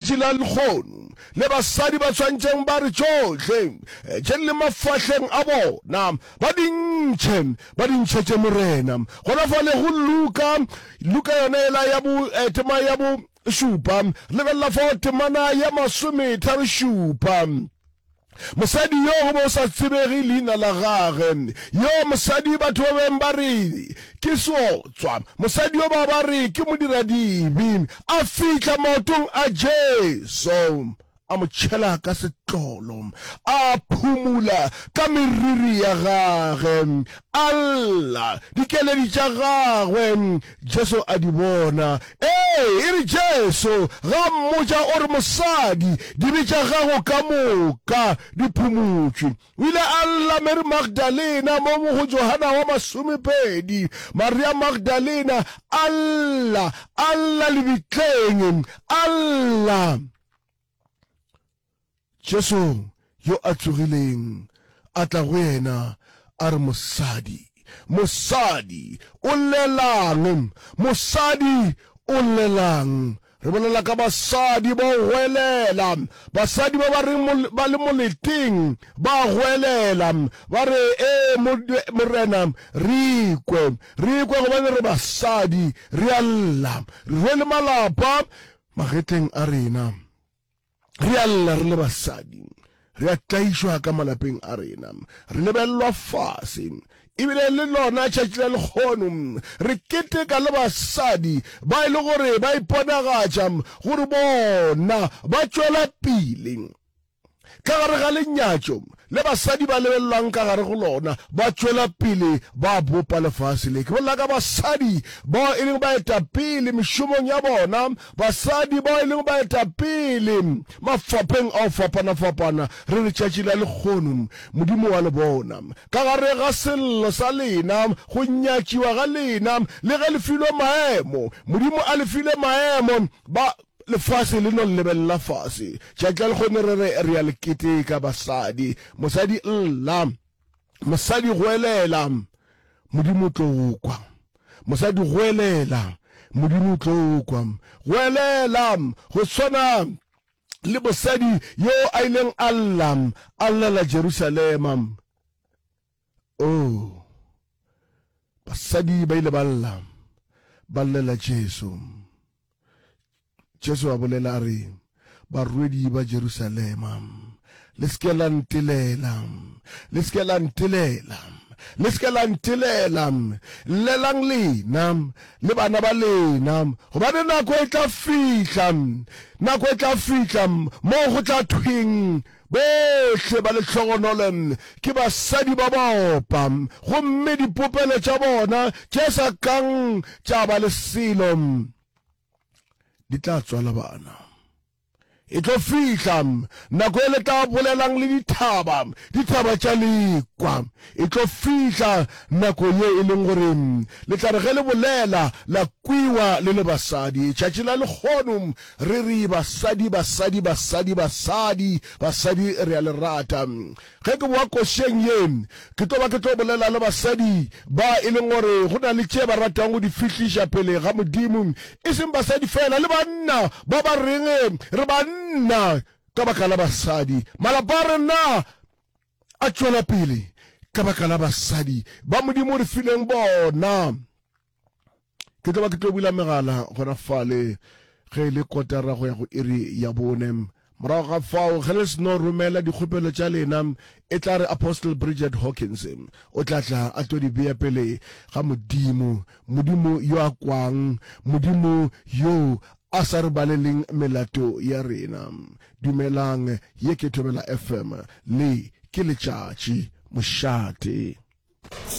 Tšela lehono, le basadi ba swantšeng ba re tšohle tše di le mafahleng a bona ba di ntšhe, ba di ntšhetše Morena. Gona fale go Luka, Luka yona yela ya bo, tema ya bo šupa. Lebelela fao, temana ya masometharo šupa. Mosadi yo go be o sa tsebege leina la gage. Yo mosadi batho ba beng ba re ke seotswa. Mosadi yo ba ba re ke modiradibi. A fihla maotong a Jesu, a mo tšhela ka setlolo, a phumula ka meriri ya gage, a lla dikeledi tša gagwe, Jesu a di bona. Ee, e re Jesu ga a mmotša, o re, Mosadi, dibe tša gago ka moka di phumutšwe. O ile a lla Mary Magdalena mo go Johana wa Masomepedi. Maria Magdalena a lla, a lla lebitleng, a lla. Jesu yo a tsogileng a tla go yena, a re, Mosadi, mosadi, o llelang? Mosadi, o llelang? Re bolela ka basadi ba o goelela, basadi ba ba reng ba le moleteng ba goelela, ba re, Ee, Morena, re ikwe, re ikwe gobane re basadi, re a lla, re rwele malapa magetleng a rena. Re a lla re le basadi, re a tlaišwa ka malapeng a rena, re lebellwa fase, ebile le lona tšatši la lekgono re keteka le basadi ba e le gore ba iponagatša gore bona ba tšwela pele ka gare ga lenyatšo le basadi ba lebelelwang ka gare go lona ba tšwela pele ba bopa lefase le. Ke bolela ka basadi bao e leng baetapele mešomong ya bona, basadi bao e leng baetapele mafapheng a go fapana-fapana. Re re tšatši la lekgono Modimo wa le bona ka gare ga sello sa lena, go nyatšiwa ga lena, le ge le filwe maemo, Modimo a le file maemo, ba Lefase le no llebelela fase. Tšatši la lekgone re re re ya le keteka basadi. Mosadi lla. Mosadi goelela. Modimo o tlo o kwa. Mosadi goelela. Modimo o tlo o kwa. Goelela go swana le mosadi yo a ileng a lla a llela Jerusalema. Oo! Basadi ba ile ba lla, ba llela Jesu. Jesu a bolela a re, Barwedi ba Jerusalema, le se ke la ntelela, le se ke la ntelela, le se ke la ntelela, llelang lena le bana ba lena, gobane nako e tla fihla, nako e tla fihla moo go tla thweng, Bohle ba lehlogonolo ke basadi ba baopa, gomme dipopelo tša bona tše sa kang tša ba le selo di tla tswala bana. E tlo fihla nako e le tla bolelang le dithaba, dithaba tša lekwa. E tlo fihla nako ye e leng gore le tla re ge le bolela la kwiwa le le basadi. Tšatši la lekgono Re re basadi, basadi, basadi, basadi, basadi re a le rata. Ge ke boa košeng ye, ke tlo ba ke tlo bolela le basadi ba e leng gore go na le tše ba ratang go di fihliša pele ga Modimo, e seng basadi feela, le banna ba ba reng re banna ka baka la basadi. Malapa a rena a tšwela pele ka baka la basadi ba Modimo o re fileng bona. ke tlo ba ke tlo bula megala gona fale ge e le kotara go ya go iri ya bone morago ga fao ge le seno romela dikgopelo tša lena e tla re apostle bridget hawkins o tla tla a tlo di bea pele ga modimo modimo yo a kwang modimo yo a sa re baleleng melato ya rena dumelang ye ke thobela fm le ke letšatši mošate